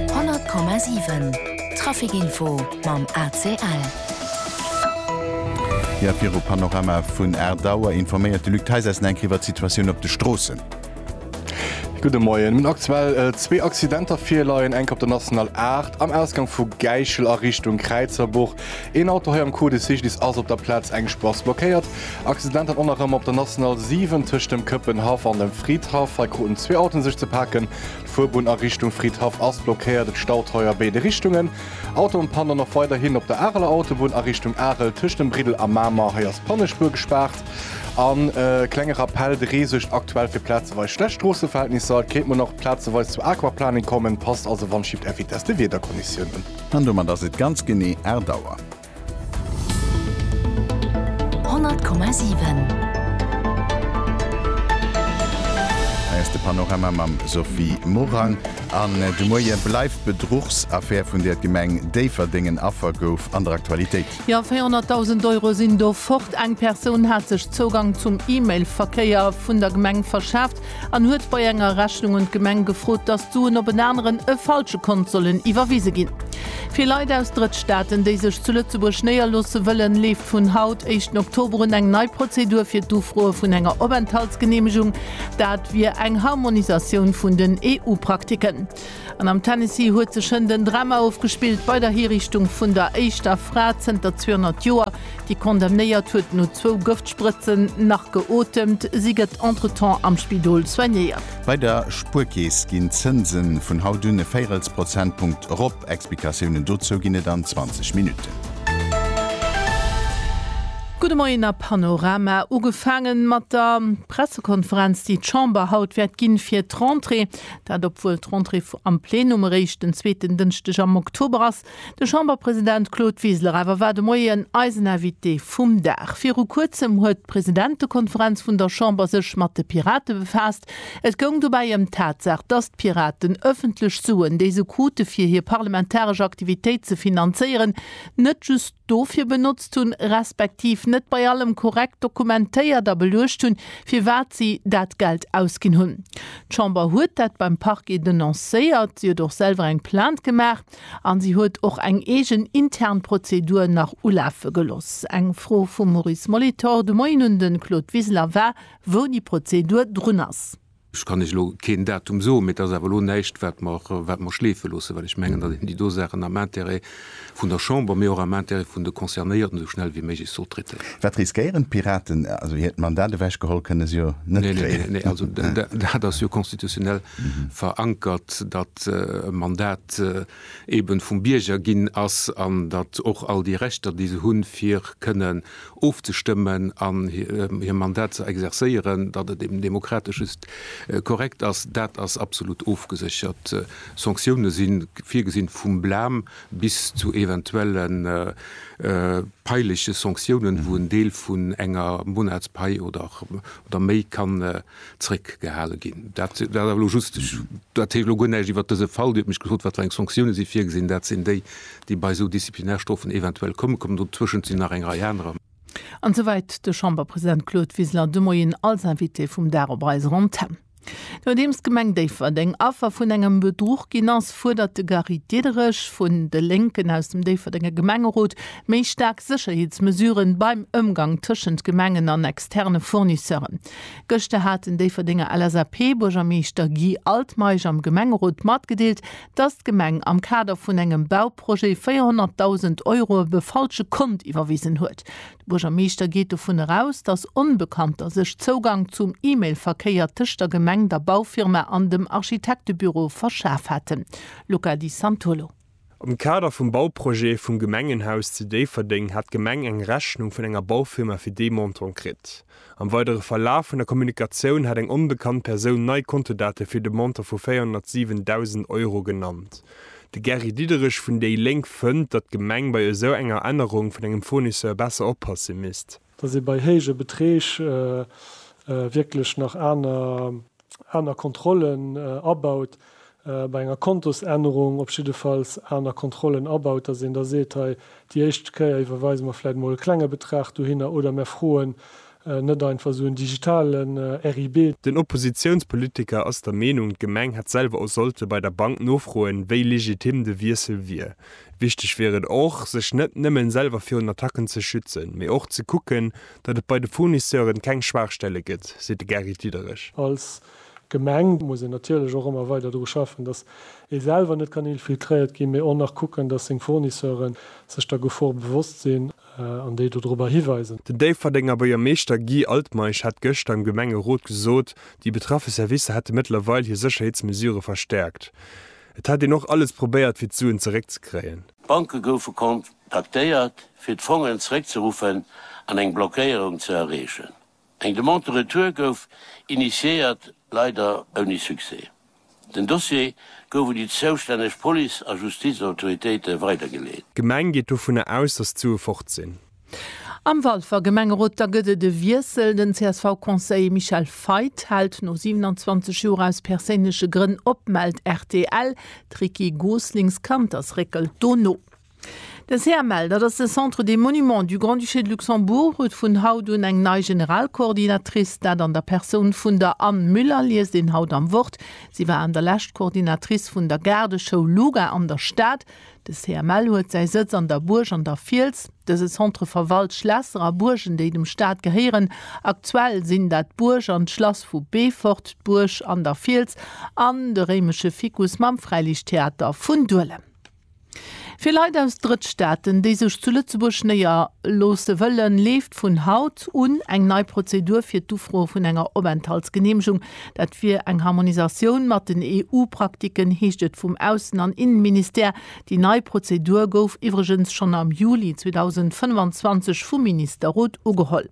100,7 Trafic Info mam ACL. Jo, viru Panorama vun 8 Auer informéiert de Luc Theisessen enk iwwert d'Situatioun op de Stroossen. Gudde Moien. Mir hunn aktuell zwee Accidenter virleien, enk op der National 8 am Ausgang vu Gäichel a Richtung Kräizerbuch. Een Auto hei am Cours de Cycliste ass op der Plaz eng Spross blockéiert. Accident hat och nach ëm op der National 7 tëscht dem Këppenhaff an dem Fridhaff. Hei kruten zwee Autoen sech ze paken. D'Fuerbunn a Richtung Fridhaff ass blockéiert, et staut hei a béide Richtungen. Autoen pannen och weiderhin op der Areler Autobunn a Richtung Arel tëscht dem Briddel a Mamer. Hei ass d'Pannespuer gespaart. A klenge Rappell, De Ree suergt aktuell fir plazeweis schlecht Stroosseverhältnisser. Et kéint muer nach plazeweis zur Aquaplaning kommen. Passt also wann Schied FITES de Wiederkonditiounen. An domat ass et ganz genee 8 Auer. Hei ass de Panorama mam Sophie Morang. An de Moie bleift d'Bedruchsaffär, vun där d'Gemeng Déifferdeng en Affer gouf, an der Aktualitéit. Jo, 400.000 Euro sinn do fort. Eng Persoun hat sech Zougang zum E-Mail-Verkéier vun der Gemeng verschaaft. an huet bei enger Rechnung un d'Gemeng gefrot, dass d'Suen op en aneren, e falsche Kont sollen iwwerwise ginn. Fir Leit aus Drëttstaaten, déi sech zu Lëtzebuerg néierloosse wëllen, leeft vun haut, éischten Oktober, un eng nei Prozedur fir d'Ufroe vun enger Openthaltsgeneemegung. Dat wier eng Harmonisatioun vun den EU-Praktiken. An am Tennessee huet sech hënt en Drama ofgespillt bei der Hiriichtung vun der éischter Fra zënter 200 Joer, déi condemnéiert huet no zwou Gëftsprëtzen nach geotemt. Si gëtt entretemps am Spidol soignéiert. Bei der Spuerkeess ginn d'Zënse vun haut un e Véirelsprozentpunkt erop. Explikatiounen dozou ginn et an 20 Minutten. Gudde Moien a Panorama. Ugefaange mat der Pressekonferenz, déi d'Chamber haut wäert ginn, fir d'Rentrée. Dat obwuel d'Rentrée am Plenum eréischt den zweeten Dënschdeg am Oktober ass. De Chamberpresident Claude Wiseler awer war de Moien eisen Invité vum Dag. Viru Kuerzem huet d'Presidentekonferenz vun der Chamber sech mat de Pirate befaasst. Et goung dobäi ëm d'Tatsaach, datt d'Piraten ëffentlech Suen, déi se krute fir hir parlamentaresch Aktivitéit ze finanzéieren, net just, dofir benotzt hunn, respektiv net bei allem korrekt dokumentéiert a beluecht hunn, firwat si dat Geld ausginn hunn. D'Chamber huet dat beim Parquet denoncéiert, si huet och selwer eng Plainte gemaach a si huet och eng eegen intern Prozedur nach ulafe gelooss. Eng Fro vum Maurice Molitor de Moien un de Claude Wiseler war, wou déi Prozedur drun ass. Ech kann Iech elo keen Datum soen, mee et ass awer elo näischt, wat mer schleefe loossen, well ech mengen, datt een déi do Saachen am Intérêt vun der Chamber, mee och am Intérêt vun de Concernéierten esou schnell wéi méiglech sollt traitéieren. Wat riskéieren d'Piraten? Also hiert Mandat ewechgeholl kënne se jo net kréien. Nee, nee, nee, also dat ass jo constitutionnel verankert, datt e Mandat eeben vum Bierger ginn ass an datt och all déi Rechter, déi se hunn, fir kënnen ofzestëmmen an hir Mandat ze exerzéieren, datt et eben demokratesch just korrekt ass, dat ass absolut ofgeséchert. Sanktioune si virgesinn, vum Blam bis zu eventuelle peilege Sanktiounen, wou en Deel vun enger Monatspai oder méi kann zréckgehale ginn. Dat war elo just, ech erziele elo guer näischt iwwert dëse Fall. Dir hutt mech gefrot, wat fir eng Sanktioune si virgesinn. Dat sinn déi, déi bei esou Disziplinarstrofen eventuell kommen. Kommen dotëschent sinn nach eng Rei anerer. An souwäit de Chamberpresident Claude Wiseler de Moien als Invité vum Dag op eiser Antenn. Nodeems d'Gemeng Déifferdeng Affer vun engem Bedruch ginn ass, fuerdert de Gary Diederich vun de Lénken aus dem Déifferdenger Gemengerot méi staark Sécherheetsmesuren beim Ëmgang tëschent Gemengen an externe Fournisseuren. Gëschter hat den Déifferdenger LSAP-Buergermeeschter Guy Altmeisch am Gemengerot matgedeelt, datt d'Gemeng am Kader vun engem Bauprojet 400.000 Euro op e falsche Kont iwwerwisen huet. De Buergermeeschter geet dovun eraus, datt Onbekannter sech Zougang zum E-Mail-Verkéier tëscht der Gemeng, der Baufirma an dem Architektebüro verschaf haten. Luca Di Santolo. Am Kader vum Bauprojet vum Gemengenhaus zu Déifferdeng hat d'Gemeng eng Rechnung vun enger Baufirma fir dee Montant kritt. Am weidere Verlaf vun der Kommunikatioun hat eng onbekannt Persoun nei Kontodate fir de Montant vu 407.000 Euro genannt. De Gary Diderich vun déi Lénk fënnt, datt d'Gemeng bei esou enger Ännerung vun engem Fournisseur besser oppasse misst. dass ee bei héije Beträg wierklech nach aner Kontrollen abaut, bei enger Kontosännerung op jiddefalls aner Kontrollen abaut, dass een da seet, hei déi éischt Kéier iwwerweise mer vläicht emol e klenge Betrag dohinner oder mer froen net einfach esou en digitalen RIB. Den Oppositiounspolitiker ass der Meenung, d'Gemeng hätt selwer och sollte bei der Bank nofroen, wéi legitim de Wiessel wier. Wichteg wier et och, sech net nëmmen selwer virun Attacken ze schützen, mee och ze kucken, datt et bei de Fournisseuren keng Schwaachstelle gëtt, seet de Gary Diederich. Als Gemeng muss een natierlech och ëmmer weider dru schaffen, datt ee selwer net kann infiltréiert ginn, mee och nach kucken, datt seng Fournisseuren sech der Gefor bewosst sinn an déi dodrobber hiweisen. Den Déifferdenger Buergermeeschter Guy Altmeisch hat gëschter am Gemengerot gesot, déi betraffe Servicer hätte mëttlerweil hir Sécherheetsmesure verstäerkt. Et hätt een och alles probéiert fir d'Suen zeréckzekréien. D'Banke goufe kontaktéiert fir d'Fongen zeréckzeruffen an eng Blockéierung ze erreechen. Eng Demande de retour gouf initiéiert, leider ouni Succès. Den Dossier gouf un déi zoustänneg Police a Justizautoritéite weidergeleet. D'Gemeng geet dovunner aus, datt d'Sue fort sinn. Am Walfer Gemengerot da gëtt et e Wiessel, Den CSV-Conseiller Michel Feith hält no 27 Joer aus perséinleche Grënn op, mellt rtl. D'Ricky Goslings Kannters réckelt do no. De CML, dat ass de Centre des Monuments du Grand-Duché de Luxembourg, huet vun haut un eng nei Generalkoordinatrice, dat an der Persoun vun der Anne Müller, liest een haut am Wort. Si war an der Lescht Koordinatrice vun der Gaardeschoul Luga an der Stad. De CML huet säi Sëtz an der Buerg an der Fiels. Dëse Centre verwalt Schlässer a Buergen, déi dem Staat gehéieren. Aktuell sinn dat d'Buerg an d'Schlass vu Beefort, d'Buerg an der Fiels an de réimesche Ficus mam Fräiliichttheater vun Duelem. Fir Leit aus Drëttstaaten, déi sech zu Lëtzebuerg néier loosse wëllen, leeft vun haut un eng nei Prozedur fir d'Ufroe vun enger Openthaltsgeneemegung Dat wier eng Harmonisatioun mat den EU-Praktiken, heescht et vum Aussen an Innenministère. Déi nei Prozedur gouf iwwregens schonn am Juli 2025 vum Ministerrot ugeholl.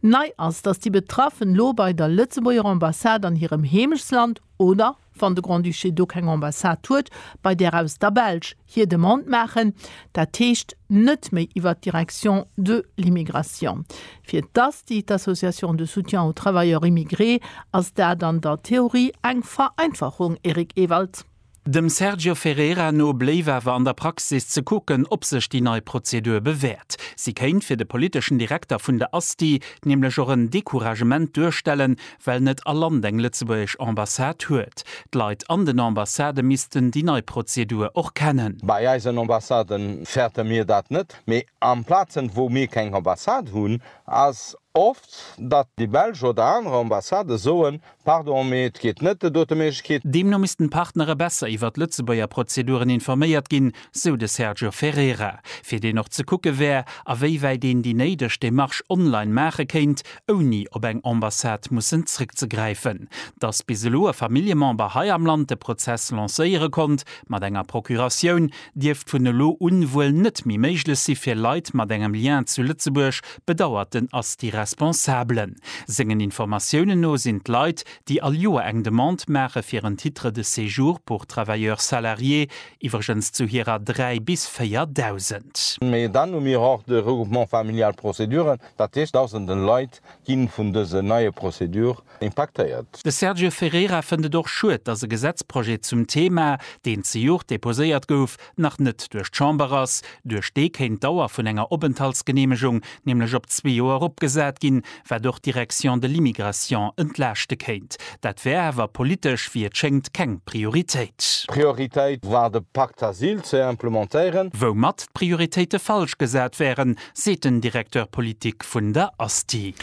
Nei ass, datt déi Betraffen lo bei der Lëtzebuerger Ambassade an hirem Heemechtsland oder, wann de Grand-Duché do keng Ambassade huet, bei där aus der Belsch, hir Demande maachen, dat heescht net méi iwwert d'Direction de l'immigration. Fir d'ASTI, déi d'Association de soutien aux travailleurs immigrés, ass dat an der Theorie eng Vereinfachung, Eric Ewald. Dem Sergio Ferreira no bléif awer an der Praxis ze kucken, ob sech déi nei Prozedur bewäert. Si kéint fir de politeschen Direkter vun der ASTI nämlech och en Decouragement duerstellen, well net all Land eng lëtzebuergesch Ambassade huet. D'Leit an den Ambassadë missten déi nei Prozedur och kennen. Bei eisen Ambassade fäerte mir dat net, mee an Plazen, wou mir keng Ambassade hunn, ass oft, datt déi belsch oder aner Ambassade soen, Pardon, mee et geet net, et huet e Méiglechkeet. Deemno missten d'Partnere besser iwwert d'Lëtzebuerger Prozeduren informéiert ginn, sou de Sergio Ferreira, fir deen och ze kucke wär, awéiwäit een déi néideg Demarche online maache kéint, ouni op eng Ambassade mussen zréckzegräifen. Datt bis elo e Familljemember hei am Land de Prozess lancéiere konnt mat enger Procuratioun, dierft vun elo un wuel net méi méiglech si fir Leit mat engem Lien zu Lëtzebuerg, bedauert den Asti Responsable. Sengen Informatiounen no sinn d'Leit, déi all Joer eng Demande maache fir en Titre de séjour pour travailleurs salariés, Iwwregens zu hirer 3 bis 4 Dausend. Mee dann hu mir och de Regroupement familial Prozeduren, dat heescht Dausenden Leit ginn vun dësen neie Prozedur impaktéiert. De Sergio Ferreira fënnt et och schued, dass e Gesetzprojet zum Thema, deen zejoert deposéiert gouf, nach net duerch d'Chamber ass. Duerch dee kéint d'Dauer vun enger Openthaltsgeneemegung nämlech op zwee Joer eropgesat ginn, wat och d'Direction de l'immigration entlaaschte kéint. Dat wär awer politesch, wéi et schéngt, keng Prioritéit. Prioritéit war de Pacte Asyl ze implementéieren. Woumat d'Prioritéite falsch gesat wären, seet den Directeur politique vun der Asti.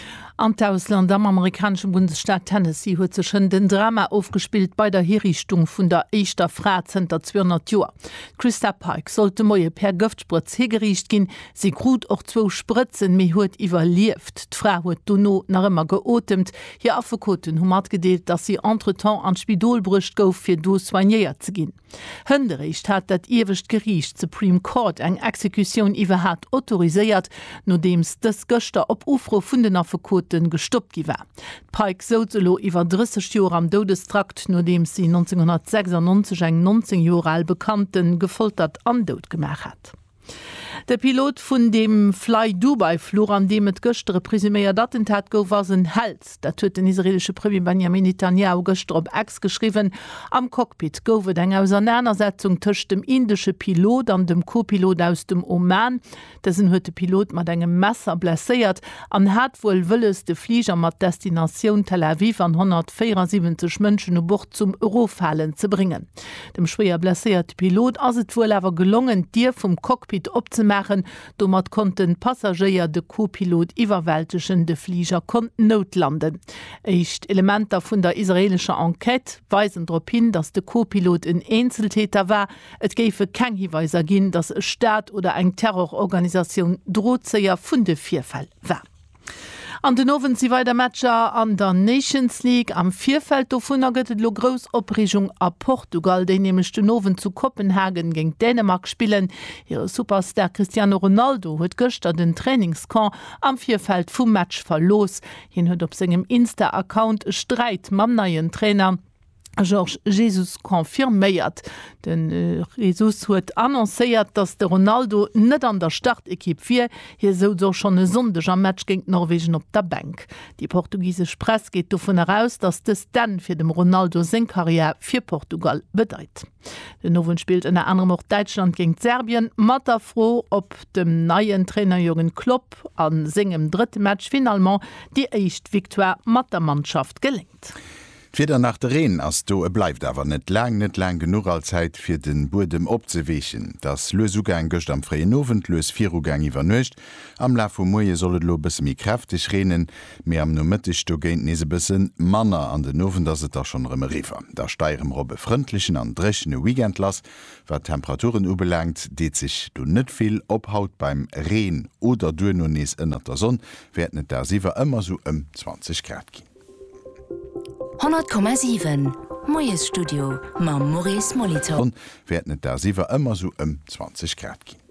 An d'Ausland, Am amerikanesche Bundesstaat Tennessee huet sech hënt en Drama ofgespillt bei der Hiriichtung vun der éischter Fra zënter 200 Joer. D'Christa Pike sollt de Moie per Gëftsprëtz higeriicht ginn, Si krut och zwou Sprëtzen, mee huet iwwerlieft. D'Fra huet dono nach ëmmer geotemt. Hir Affekoten hu matgedeelt, datt si entretemps an d'Spidol bruecht gouf, fir do soignéiert ze ginn. Hënderéischt hat dat iewescht Geriicht, d'Supreme Court, eng Exekutioun iwwerhat autoriséiert, nodeems dës gëschter op Ufro vun den Affekote gestoppt gi war. D'Pike souz elo iwwer 30 Joer am Doudestrakt, nodeems si 1996 eng 19 Joer al Bekannte gefoltert an dout gemaach hat. De Pilot vun deem Flydubai-Fluch, an deem et gëschter e presuméiert Attentat gouf, ass en Held. Dat huet den israeelesche Premier Benjamin Netanjahu gëschter op X geschriwwen. Am Cockpit gouf et eng Ausernanersetzung tëscht dem indesche Pilot an dem Co-Pilot aus dem Oman. Dësen huet de Pilot mat engem Messer blesséiert an hat wuel wëlles, de Fliger mat Destinatioun Tel Aviv an 174 Mënschen u Bord zum Eroffalen ze bréngen. Dem schwéier blesséierte Pilot ass et wuel awer gelongen, d'Dier vum Cockpit opzemaachen. Domat konnten d'Passagéier de Co-Pilot iwwerwältegen. De Fliger konnt noutlanden. Éischt Elementer vun der israeelescher Enquête weisen drop hin, datt de Co-Pilot en Eenzeltäter war. Et géife keng Hiweiser ginn, datt e Staat oder eng Terrororganisatioun Drozéier vun de Virfäll war. An den Owend si weider Matcher an der Nations League. Am Virfeld dovunner gëtt et elo grouss Opreegung a Portugal, déi nämlech den Owend zu Kopenhagen géint Dänemark spillen. Hire Superstar Cristiano Ronaldo huet gëschter den Trainingscamp am Virfeld vum Match verlooss. Hien huet op sengem Insta-Account e Sträit mam neien Trainer. Georges Jesus confirméiert. De Jesus huet annoncéiert, datt de Ronaldo net an der Startekipp wier. Hie souz och schonn e Sonndeg am Match géint Norwegen op der Bänk. Déi portugisesch Press geet dovun eraus, datt dëst d'Enn fir dem Ronaldo seng Karriär fir Portugal bedeit. Den Owend spillt ënner anerem och Däitschland géint Serbien. Mat der Fro, ob dem neien Trainer Jürgen Klopp a sengem drëtte Match finalement déi éischt Victoire mat der Mannschaft geléngt. D'Wieder nach de Reen ass do, e bleift awer net laang, net laang genuch all Zäit fir de Buedem opzeweechen. Et ass lues ugaang gëscht am fréien Owend, lues virugaang iwwer Nuecht. Am Laf vum Moie soll et elo e bësse méi kräfteg reenen, mee am Nomëtteg dogéint nees e bësse manner an den Owend ass et da schonn erëm eriwwer. Da stei erëm erop e frëndlechen an dréchene Weekend lass. Wat d'Temperaturen ubelaangt, deet sech do net vill op. Haut beim Reen oder duerno nees ënnert der Sonn wäerten et dagsiwwer ëmmer sou ëm 20 Grad ginn. 100,7 Moiesstudio mam Maurice Molitor. D'Sonn wäert net dagsiwwer ëmmer sou ëm 20 Grad ginn.